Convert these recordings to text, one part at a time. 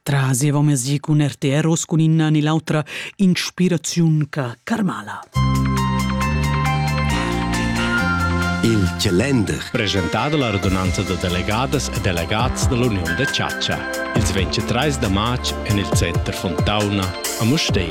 Traseva mesi cun RTR us cun inna ni l'autra inspiraziun ca Carmala. Il calender. Presentà da la radunanza da delegadas e delegats da l'Uniun da chatscha. Ils 23 da marz en il center Fontauna a Mustei.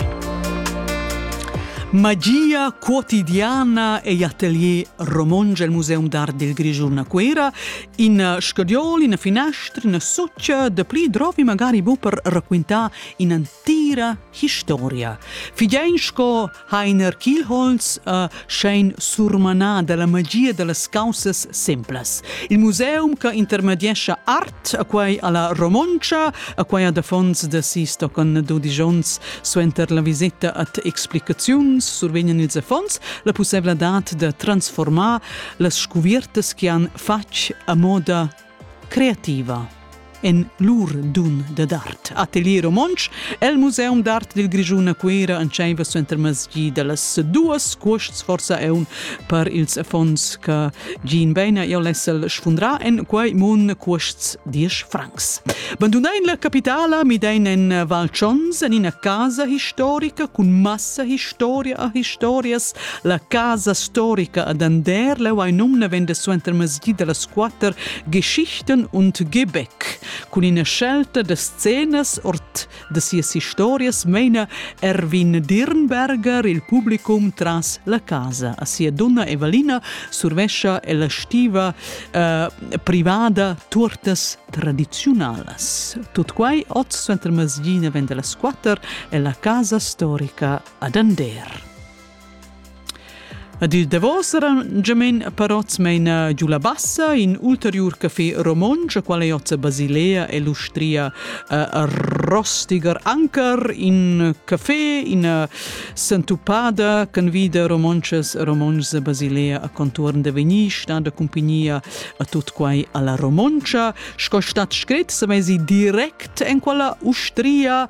Magia quotidiana e atelier romonge al Museum d'Art del Grigiun a Cuera In scadiol, ina finestra, ina sutscha, da pli drovi magari bu per raquintar in'antira historia. Fidein sco Heiner Kielholz uh, schein surmanar dalla magia dallas causas simplas. Il museum che intermediescha art a quai alla romoncia, a quai ad affons da sis tocan dudici onns suenter la visita at explicaziuns survegnan ils affons la possibilità da transformar las scuviertas che han fatg a moda creativa en lur dun da d'art. Atelier romontsch el Museum d'art dil Grischun a Cuera entscheiva suenter masgi dallas duas cuosts forsa eun per ils affons che Jean Beina e Lessel sfundra en quei mun cuosts 10 francs. Bandunein la capitala midein en Val Chons en ina casa historica cun massa historia a historias La casa storica ad Ander leu ei num navenda suenter masjid dallas quater Geschichten und Gebäck. Cun ina scelta da scenas ord da sias historias meina Erwin Dirnberger il publicum tras la casa. A sia dunna Evalina survescia ella stiva eh, privada turtas tradiziunalas. Tut quai oz suenter masjid navenda las quatter e la casa storica ad Ander. Ed il davos era Gemen Paroz meina giu la bassa, in ulteriur café romontsch, qual ei oz Basilea e l'ustria uh, Rostiger. Anker in café, ina sentupada che vida romontschas e romontschs Basilea a contuorn de vegnir, sta da compagnia a tut quai alla romontша. Sco stat scrit, se mesi direct en quella ustria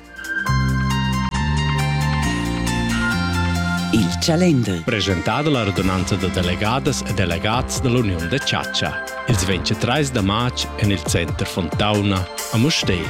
Il calender. Presentà dalla radunanza da delegadas e delegats dall'Uniun da chatscha. Ils 23 da marz en il center Fontauna a Mustér.